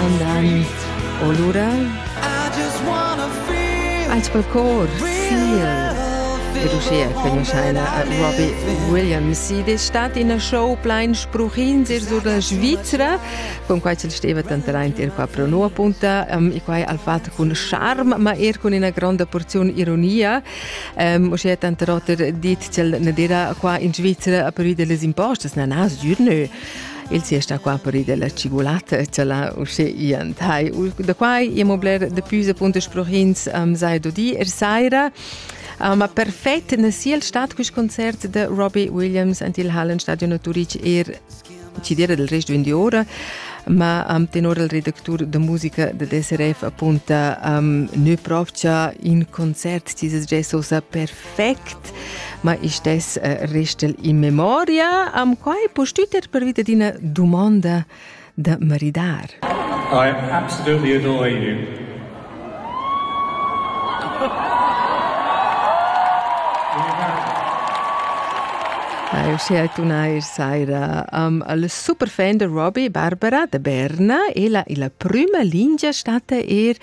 andan o lura ait quel cor fiel ed uschia cognoschaina a Robbie Williams. Id es stat ina show plain spruchins ir sur la Svizra, cun quai ch'el steva tanteraint ir qua pro nu appunta, um, e quai al fat cun charm, ma er cun ina gronda porziun ironia. Um, uschia tanter oter dit ch'el ne dira qua in Svizra a pervi de les impostas, na, na, sgür nö. Il sia sta qua per della cigulata, cela usce ian tai. Da quai iamo bler de pius appunto sprochins um, sai dodi er saira. Uh, ma perfett na siel stat quist concert de Robbie Williams ant il Hallenstadion Turic er cidera del resto in ora ma um, tenor il redactur de musica de DSRF appunta um, ne propcha in concert dieses jazz osa perfett perfect, ma ich des äh, restel in memoria. Am quai postüter pervi ad ina domanda da maridar. I absolutely adore you. Hai uschè tuna ir saira um, al super fan de Robbie Barbara de Berna e la illa prüma lingia stata er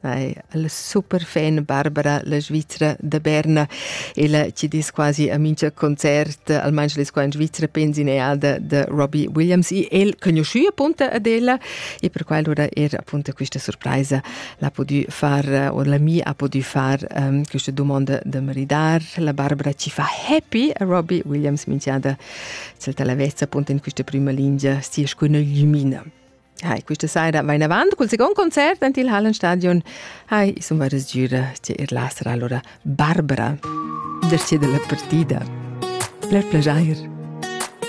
Ei, la superfan Barbara, la Svizra da Berna, ella ci dis quasi a mincha concert, almain les qua in Svizra pensi neada de Robbie Williams e el conosciu appunta ad ella e per quel ora era appunta questa surpresa l'ha podu far o la mi ha podu far um, questa domanda da maridar, la Barbara ci fa happy a Robbie Williams minchiada cel talavezza appunta in questa prima linea sia scuna lumina. Hai, questa saira vai avant col second concert en il Hallenstadion. Hai, insomma, resgiura che er la sarà allora Barbara, derce della partita. Per piacer.